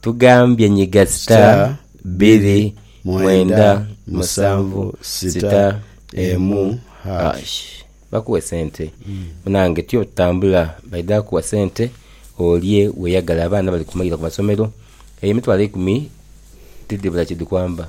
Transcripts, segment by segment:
Tugambye nyiga star biri mwenda musanvu sita emu hash bakuwe sente munange tyo tambula baidha kuwa sente olye weyagale abaana bali kumayira kumasomero eyo emitwalo eikumi tidhibula kyedhikwamba.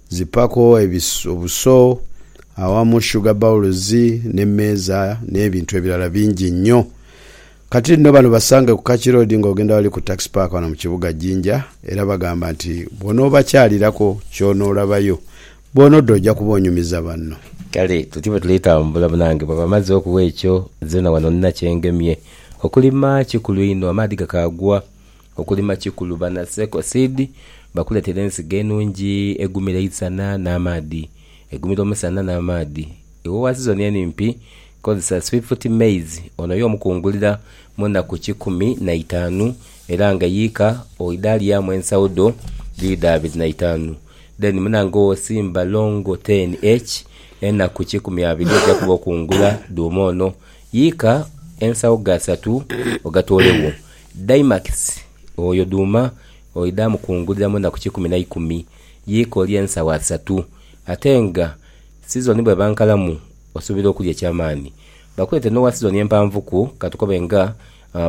Zipako ebiso, obuso, awamu sugar bowls n'emmeeza n'ebintu ebirala bingi inho. Kati nno bano basange ku Kaki Road nga ogenda awali ku Tax Park wano mu kibuga Jinja era bagamba nti bw'onoobakyalirako ky'onoolabayo bw'onodda oja kuba onyumiza banno. Kale tutyo bwe tuli tambula banange. Bwaba amazzi okuwa ekyo nzena wano nina kyengemye. Okulima kikulu inho amaadhi gakaagwa. Okulima kikulu bana Seko Seed bakuletera ensigo enungi egumira eisana n'amaadhi, egumira omusana n'amaadhi. Iwe owa sizoni enimpi kozesa Swift Maize onoye omukungulira mu naku kikumi na itanu era nga yiika oidha lyamu ensawo dho dhiidho abiri na itanu then munange owosimba Longo 10H enaku kikumi abiri oja kuba okungula dhuuma ono yiika ensawo ghasatu ogatoole wo Daimakisi oyo duuma oidha mukungulira mu naku kikumi na ikumi, yiika olye ensagho asatu. Ate nga sizoni bw'eba nkalamu, osuubira okulya eky'amaani. Bakuleete n'owa sizoni empanvuku, ka tukobe nga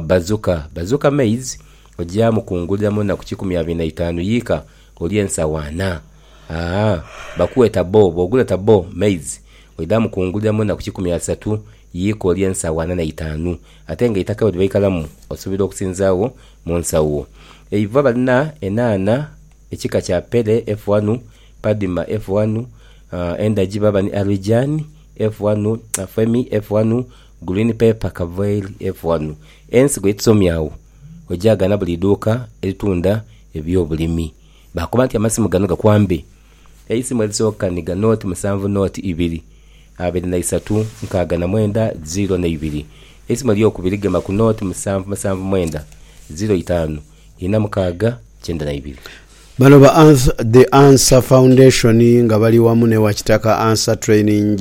bazuka. Bazuka maize oja mukungulira mu naku kikumi abiri na itaanu, yiika olye ensagho ana. Aa Bakuwe tabo, bw'ogula tabo maize oidha mukungulira mu naku kikumi asatu. Yiika olye ensagho ana na itaanu, ate nga eitaka bwe libaikalamu osuubira okusinzaagho mu nsagho. Eiva balina enhaana ekika kya Pele F1, Padma F1, endagi baba ni Arijaan F1, Femi F1, Green Pepper Kavail F1. Ensigo ye tusomye agho ogyaghana buli idhuuka eritunda eby'obulimi. Bakoba nti amasimu gano gakwambe. Eisimu erisooka ni ganoti musanvu noti ibiri abiri na isatu nkaaga na mwenda ziro na ibiri. Eisimu eryokubiri gema ku noti musanvu musanvu mwenda ziro itaanu ina mukaaga kyenda na ibiri. Bano ba The Answer Foundation nga bali wamu n'ewa Kitaka Answer Training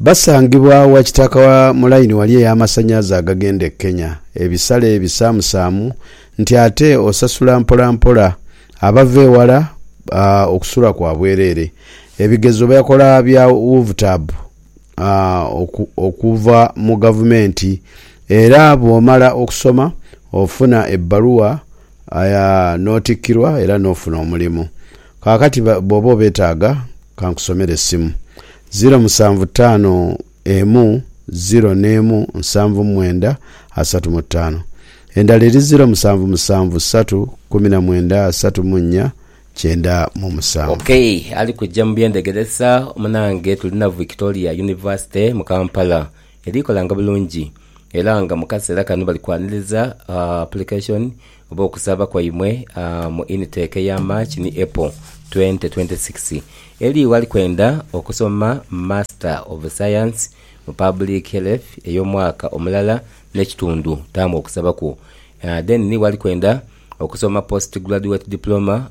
Basangibwa wa kitaka wa mu layini wali ey'amasanhalaze agagenda e Kenya, ebisale ebisaamusaamu nti ate osasula mpolampola. Abava ewala okusula kwa bwereere. Ebigezo bakola bya UVTAB okuva mu gavumenti era bw'omala okusoma ofuna ebbaluwa n'otikkirwa era n'ofuna omulimu. Kaakati bw'oba obeetaaga ka nkusomere essimu. Ziro musanvu taanu emu ziro n'emu nsanvu mwenda asatu mu taanu. Endala eri ziro musanvu musanvu satu kumi na mwenda asatu mu nnya kyenda mu musanvu. Okay ali kujja mu byendhegeresa munange tuli na Victoria University mu Kampala eri kolanga bulungi era nga mu kaseera kano bali kwaniriza application oba okusaaba kwaimwe mu initake eya March ni April twente twente sikisi. Eli wali kwenda okusoma Master of Science mu Public Health ey'omwaka omulala n'ekitundu, taamu okusaba kwo. Then ni wali kwenda okusoma Postgraduate Diploma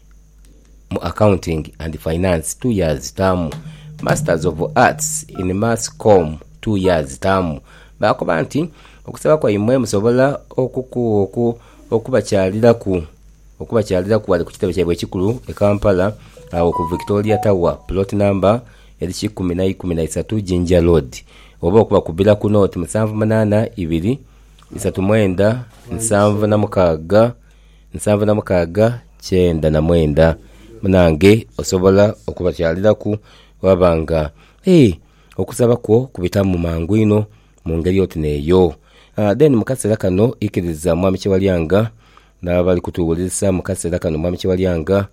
mu Accounting and Finance, two years taamu Masters of Arts in Mass Comm, two years taamu. Baakoba nti, Okusaba kwaimwe musobola okubakyaliraku okubakyaliraku ghale ku kitebe kyaibwe ekikulu e Kampala agho ku Victoria Tower, plot number eri kikumi na ikumi na isatu Jinja Road, oba okubakubira ku nooti musanvu munaana ibiri, isatu mwenda, nsanvu na mukaaga. Nsanvu na mukaaga kyenda na mwenda. Munange osobola okubakyaliraku bwebaba nga ee okusaba kwo kubitamu mangu inho mungeri oti neeyo. Then mukasera kano ikiriza Mwami Kyewalyanga nabali kutuwulirisa mukasera kano Mwami Kyewalyanga.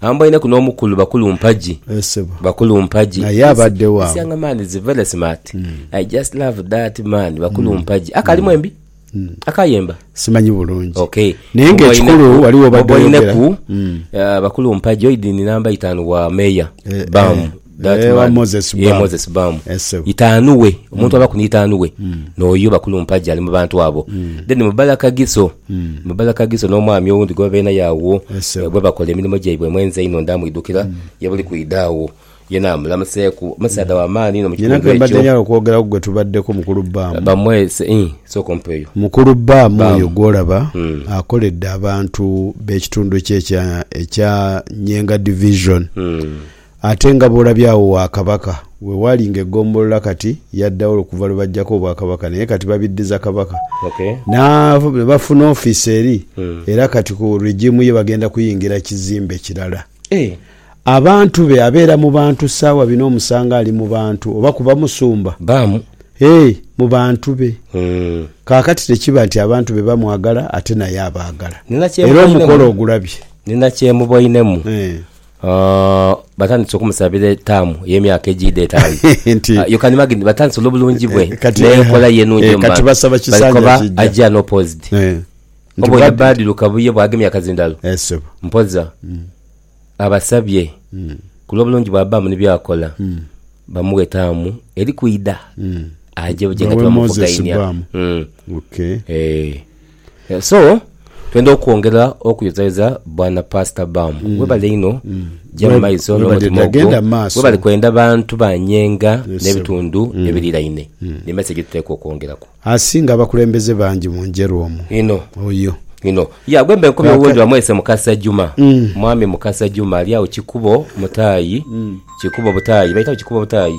Ambainaku n'omukulu bakulu mpagi. Eeh sebo. Bakulu mpagi. Naye abadegho awo. This young man is very smart. I just love that man bakulu mpagi. Ako ali mwembi? Ako ayemba? Simanyi bulungi. Ok. Naye nga ekikulu wali wobadde oyogera. Boboineku bakulu mpagi oidhi ni namba itanu wa mayor. Bam. That Ewa man, Moses yeah, Bam. Moses Bam. Eh, sebo. Itaanu we, omuntu abaku ni itaanu we, n'oyo bakulu mpaji ali mu bantu abo. Then Mubala Kagiso, Mubala Kagiso n'omwami owundi gwe babaire naye agho, Eh, sebo. eh, bwebakola emirimu gyaibwe emwenzi einho ndamwidukira, ye buli kwidha agho, ye namulamuseeku, musaadha wa maani inho mu Nyina kitundu kembadde ekyo. njagala okwogeraku gwe tubaddeko mukulu Bam. Bamwe, se- ih, sooka ompe eyo. Mukulu Bam Bam. oyo gwolaba Mm. akoledde abantu b'ekitundu kye ekya, ekya Nyenga Division. Mm. Ate nga bw'olabye agho wa Kabaka, we waali nga eggombolola kati yaddaghola okuva lwe baggyako Obwakabaka naye kati babiddiza Kabaka na bafuna ofiisi eri era kati ku regimu ye bagenda kuyingira kizimbe kirala. Abantu be abeera mu bantu ssaawa bino omusanga ali mu bantu oba kuba musumba ee mu bantu be. Kaakati tekiba nti abantu be bamwagala ate naye abaagala era omukolo ogulabye. Nina kye muboinemu Batandise okumusabira etaamu ey'emyaka egiidha etaanu. Nti- Ah, you can imagine, batandise olw'obulungi bwe Eh, kati- n'enkola ye enungi eh, omu kati bantu. basaba Bali kisanja kuba kiggya. ajja n'opposed. Eh, nti Oboine bwadi- Badiru Kabuye bwagemya akazindalo Eh, sebo. mpoza abasabye ku lw'obulungi bw'abaamu ni byakola bamuwe etaamu eri kwidha aje buje nga Bawe Moses tibamuvugainia Baamu. Mm. Okay. Eh. So twendha okwongera okuyozayoza bwana pastor bam mm. webale inho mm. jama maiso n'omutima ogwo webale kwenda bantu banyenga n'ebitundu mm. ebiriraine mm. ni message tuteekwa okwongeraku asinga abakulembeze bangi mu njeru omu ino oyo ino ya gwembe nkomye owendi bamwese mukasa juma mm. mwami mukasa juma ali awo kikubo mutaayi mm. kikubo butaayi baitawo kikubo butaayi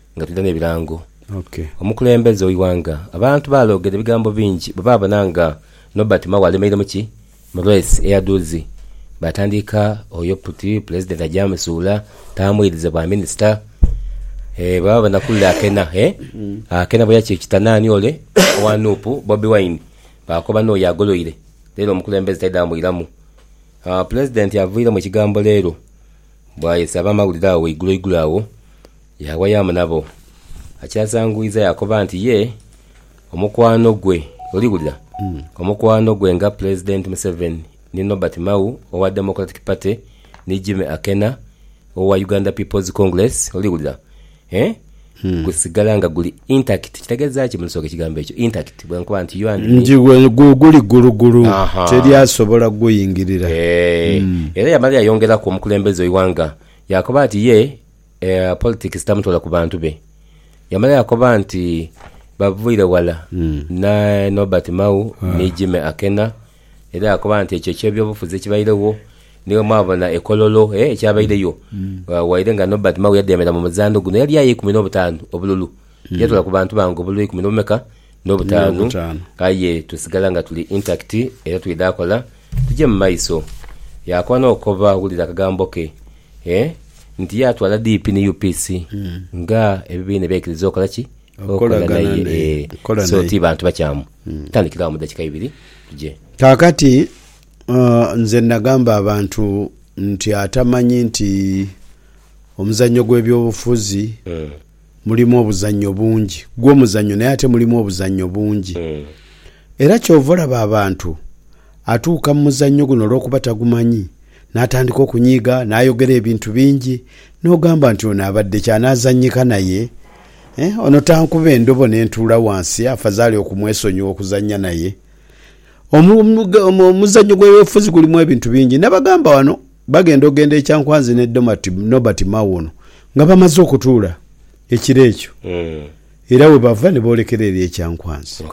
nga tulina n'ebirango. Omukulembeze w'eighanga, abantu baalogera ebigambo bingi bwe baabona nga Norbert Mao alemeire mu ki? Mu reesi eya dhuuzi. Baatandika oyo puti Pulezidenti aja amusuula, taamwirize bwa minisita. Bwe baabona kule akena, akena bwe yakikita naani ole owa nup, Bobi Wine, baakoba n'oyo agoloire leero omukulembeze taidha mwiramu. Pulezidenti avwiiremu ekigambo leero bw'ayese abamawulire agho eiguloigulo agho Yaawa yaamu nabo. Akyazanguiza yaakoba nti ye omukwano gwe, oli wulira, omukwano gwe nga Pulezidenti Museveni ni Norbert Mao owa Democratic Party ni Jimmy Akena owa Uganda People's Congress, oli wulira, eeh, gusigala nga guli intact. Kitegeeza ki mu Lusooga ekigambo ekyo intact? Bwe nkoba nti you and me. Nti guli ggulugulu, teri asobola kuguyingirira. Eeh. Era yamala yayongeraku omukulembeze w'eighanga yaakoba nti ye. Eya politics tamutoola ku bantu be. Yamala yaakoba nti baviire ghala ni Norbert Mao ni Jimmy Akena era yaakoba nti ekyo eky'ebyobufuzi ekibairegho niwe mwabona e Kololo ekyabaireyo. Waire nga Norbert Mao yadheemera mu muzaano guno yali aye ikumi n'obutaanu obululu. Yatoola ku bantu bange obululu eikumi n'obumeka n'obutaanu, aye tusigala nga tuli intakiti era twidha kola tuje mu maiso. Yaakoba n'okukoba wulira akagambo ke nti yaatwala DP ni UPC nga ebibiina ebyaikiriza okola ki? Okolagana naye. So ti bantu bakyamu. Tandikira agho mu dakika ibiri tuje. Kaakati nze nnagamba abantu nti atamanyi nti omuzannyo gw'ebyobufuzi. Mulimu obuzannyo bungi. Gwo muzannyo naye ate mulimu obuzannyo bungi. Era kyova olaba abantu atuuka mu muzannyo guno olwokuba tagumanyi n'atandika okunyiiga n'ayogera ebintu bingi n'ogamba nti ono abadde ki anaazannyika naye? Eh, ono tankuba endobo ne ntuula wansi afazaali okumwesonyiwa okuzannya naye? Omu, omu, omuzannyo gw'ebyobufuzi gulimu ebintu bingi. Nabagamba wano Bagenda ogenda e Kyankwanzi ne Domati, Nobert Mao ono nga bamaze okutuula ekiro ekyo era we bava ne boolekera eri e Kyankwanzi.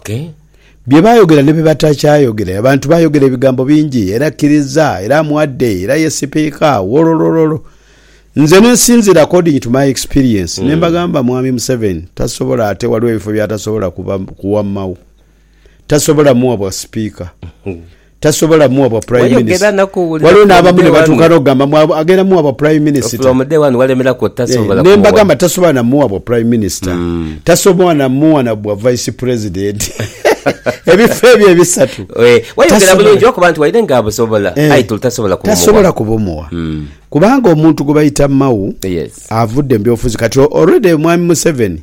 Bye baayogera ne bye batakyayogera. Abantu baayogera ebigambo bingi era kkiriza era amuwadde era ye Sipiika wololololo. Nze ne nsinziira according to my experience ne mbagamba Mwami Museveni tasobola ate waliwo ebifo by'atasobola kuwa Mao. tasobola muwa bwa sipiika, tasobola muwa bwa prime Wayogera minister. naku wulira Waliwo from n'abamu day ne one. batuuka n'okugamba mbu abo- agenda muwa bwa prime minister. From day one walemeraku oti Eh, tasobola ne kumuwa. mbagamba tasobola na muwa bwa prime minister, tasobola na muwa na bwa vice president. Ebifo ebyo ebisatu. Eh, wayogera tasobola. bulungi lwakuba nti waire nga abusobola Eh, aye tuli tasobola kumuwa. tasobola kubumuwa kubanga omuntu gwe bayita mau Yes. avudde mu byobufuzi kati already omwami museveni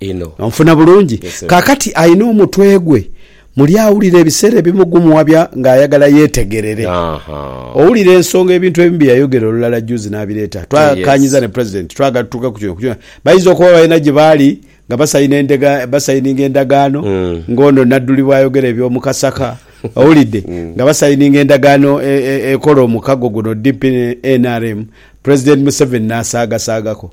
inho. Onfuna bulungi? Kaakati alina omutwe gwe muli awulira ebiseera ebimu gumuwabya ng'ayagala yeetegerere. Owulira ensonga ebintu ebimu bye yayogera olulala juuzi n'abireeta. Twakaanyiza ne Pulezidenti, twagala tutuuke ku kino. Bayinza okuba balina gye baali nga basayininga endagaano ng'ono Nadduli bw'ayogera eby'omu Kasaka, owulidde, nga basayininga endagaano ekola omukago guno DP-NRM, Pulezidenti Museveni n'asaagasaagako.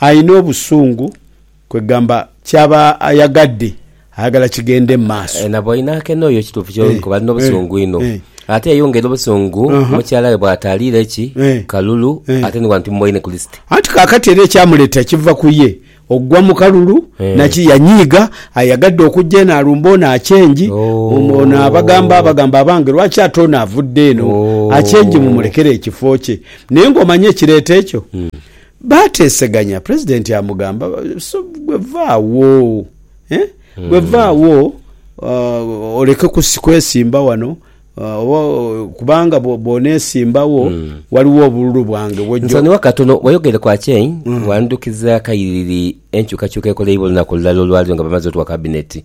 alina obusungu kwegamba kyaba ayagadde ayagala kigende mu maaso. Na bw'oina akene oyo kituufu ky'oli kuba alina obusungu inho. Ate yeyongera obusungu mukyala we bw'ataaliire ki kalulu ate ni wano timuboine ku lisiti. Anti kaakati era ekyamuleeta kiva ku ye okugwa mu kalulu naki yanyiiga ayagadde okujja eno alumbe ono acengi ono abagamba abagamba abange lwaki ate ono avudde eno acengi mumulekere ekifo kye. Naye ng'omanya ekireeta ekyo, baateeseganya. Pulezidenti amugamba, So ggwe va agho, eh? Ggwe va agho uh, oleke kusi- kwesimba wano uh, oba, uh, kubanga bwo- bw'oneesimbagho waliwo obululu bwange bw'ojja Nsonyiwa katono, wayogereku akyeyi, wandhukiza kayiriri enkyukakyuka ekoleibwa olunaku olulala olwaleero nga bamaze otuwa kabineti.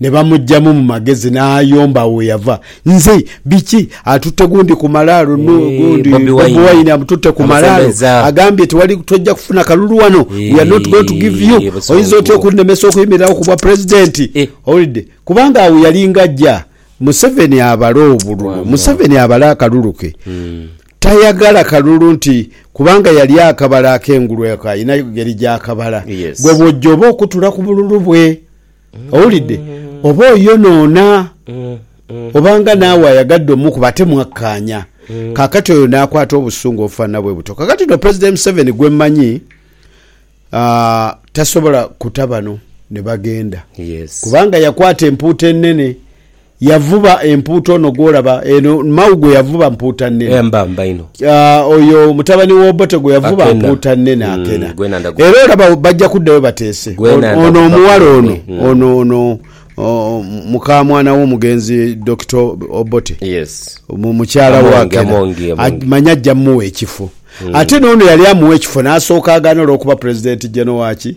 Ne bamuggyamu mu magezi n'ayomba agho gheyava. Nze, Biki? Atutte gundi ku malaalo nu gundi Bobi Wine. Bobi Wine amututte ku malaalo. Amusembezza. Agambye tewali tojja kufuna kalulu wano. We are not going to give you. Eeh, busungu. Oyinza otya okunnemesa okuyimirirawo ku bwa president? Eh. Owulidde? Kubanga agho yalinga ajja. Museveni abale obululu. Wabula. Museveni abale akalulu ke. Tayagala kalulu nti kubanga yali akabala ak'engulu eko alina engeri gy'akabala. Yes. Gwe bw'ojja oba okutula ku bululu bwe. Owulidde? Oba oyonoona, oba nga naawe ayagadde omukuba, ate mwakkaanya. Kaakati oyo n'akwata obusungu obufaanana bwe butyo. Kaakati no Pulezidenti Museveni gwe mmanyi, aah, tasobola kuta bano ne bagenda. Yes. Kubanga yakwata empuuta enene. Yavuba empuuta ono gw'olaba eno, Mawu gwe yavuba mpuuta nnene. Aye mba mba inho. Ah, oyo mutabani w'Obote gwe yavuba Akena. mpuuta nnene, Mm, Akena. gwena ndagu- Era olaba bajja kuddayo bateese. Gwena Ono- ndagu- Ono omuwala ono, bakumanyi. Mm. ono, ono, oh, mukamwana w'omugenzi Dokita Obote. Yes. mu- mukyala Amongi, wa Akena. Amongi, Amongi. A- manya ajja muwa ekifo ate n'ono yali amuwa ekifo n'asooka agaana olw'okuba pulezidenti jeno waki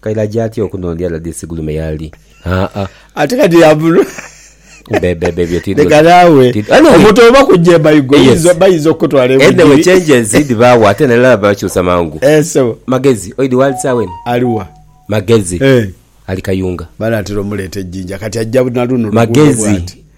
Kairaje atya okunondya Ladisi Gulume yaali? Haa. Ate kati yabulwa. Bebebe ebyo tidho. Leka naawe. Omuntu oba kujja e Maigo bayinza okukutwala e Bugiri. Anyway changes dhibaawo ate n'alala bakyusa mangu. Eeh ssebo. Magezi oidhi waali sawa eno? Ali wa? Magezi. Eeh. Ali Kayunga. Banaatera omuleeta e Jinja kati ajja na luno oluguudo bwati. Magezi.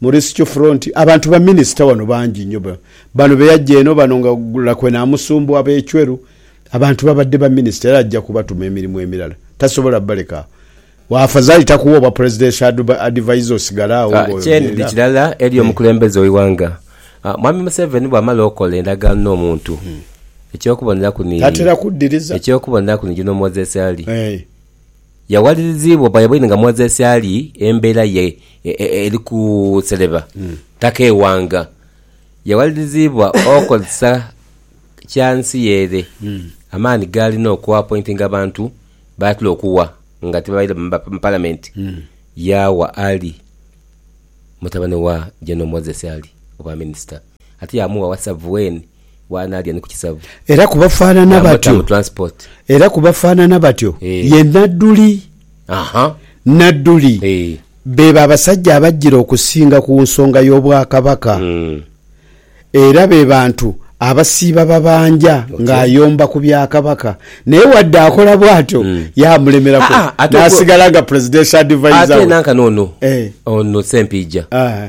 Mu Risikyo Front abantu ba Minisita wano bangi inho. Bano be yaja eno bano nga Lakwe Namusumbu, Abechweru, abantu babadde ba Minisita era ajja kubatuma emirimu emirala. Tasobola baleka agho. Afazali takuwa obwa Presidential Advisor osigale agho nga oyogerera. Ekirala eri omukulembeze we ighanga, Mwami Museveni bwamala okola endagaano no muntu, ekyokuboneraku ni, ekyokuboneraku ni Juno Moses Ali. Yawaliriziibwa oba yabaire nga mwazi esyali embeera ye eri kusereba taka eighanga. Yawaliriziibwa okozesa kya nsi ye ere amaani gaalina okuapointinga abantu baatula okuwa nga tibabaire mu Palamenti, yaawa Ali, mutabane wa General Moses Ali, obwaminisita. ate yaamugha wasavu weni w'anaalya ni ku kisavu. Era ku bafaanana batyo. Yaamuta mu transport. Era ku bafaanana batyo Eh. ye Nadduli. Aha. Nadduli Eh. beebo abasajja abajjira okusinga ku nsonga y'Obwakabaka. Mm. Era be bantu abasiiba babanja ng'ayomba ku bya Kabaka. Naye wadde akola bw'atyo, yaamulemerako Ah, ah, ate ogwo- n'asigala nga Presidential Adviser Ate we. nanka n'ono, Eh. ono Sempiija. Ah.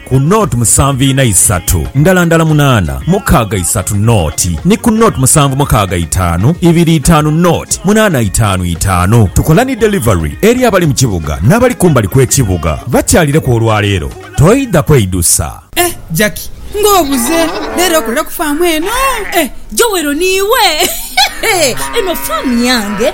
ku nought musanvu ina isatu ndala ndala munaana mukaaga isatu nought ni ku nought musanvu mukaaga itaanu ibiri itaanu nought munaana itaanu itaanu. Tukola ni delivery eri abali mu kibuga n'abali kumbali kw'ekibuga. Bakyalireku olwaleero toidha kweidusa. Eh Jackie nga obuze lero okolera ku farm eno eh. Joel niiwe? Eno farm yange.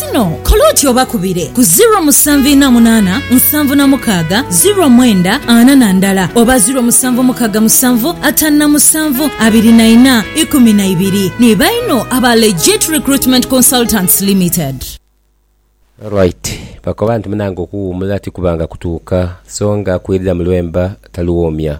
Kino kola oti obakubire ku ziro musanvu ina munana nsanvu na mukaga ziro mwenda ana na ndala oba ziro musanvu mukaga musanvu atanu na musanvu abiri na ina ikumi na ibiri. Ni baino aba Legit Recruitment Consultants Limited. Alright bakoba nti munange okuwumula tikubanga kutuuka songa akwirira mulwemba taluwoomya.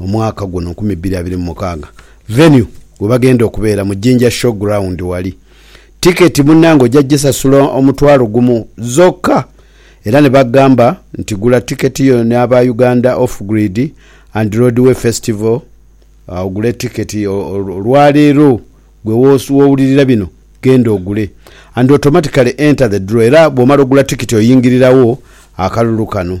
omwaka guno nkumi bbiri abiri mu mukaaga. Venue webagenda okubeera mu Jinja Show Ground wali. Ticket munange oja jisasula omutwalo gumu zoka era nebagamba nti gula ticket yo ne aba Uganda Off Grid and Roadway Festival ogule ticket olwaleero gwe wowulirira bino genda ogule and automatically enter the draw era bwomala ogula ticket oyingirirawo akalulu kano.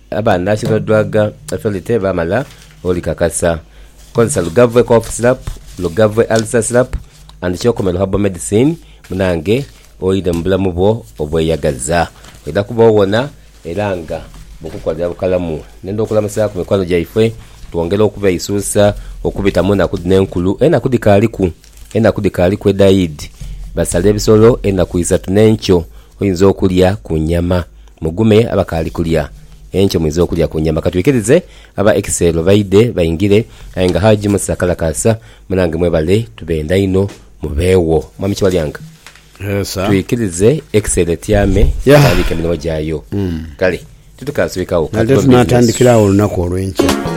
Abaana ki b'odwaga Felitte baamala olikakasa. Kozesa Lugavve Cough Syrup, Lugavve Ulcer Syrup and Kyokomero Herbal Medicine munange oidhe mu bulamu bwo obweyagaza. Oidha kuba owona era nga bukukolera bukalamu. Ndenda okulamusaaku mikwano gyaife twongere okubeeisuusa okubita mu naku dhino enkulu. Enaku dhikaaliku. Enaku dhikaali kwedha Idi, basale ebisolo enaku isatu n'enkyo oinza okulya ku nyama. Mugume abakaali kulya, enkyo muinza okulya ku nyama. Katwikirize aba Ekiseelo baidhe baingire aye nga Haji Musa Kalakaasa munange mwebale tubenda inho mubeegho. Mwami Kiwalyanga, twikirize Ekiseelo etyame etandiike emirimo gyayo. Kale titukaaswikagho, ka tube mu bizinensi.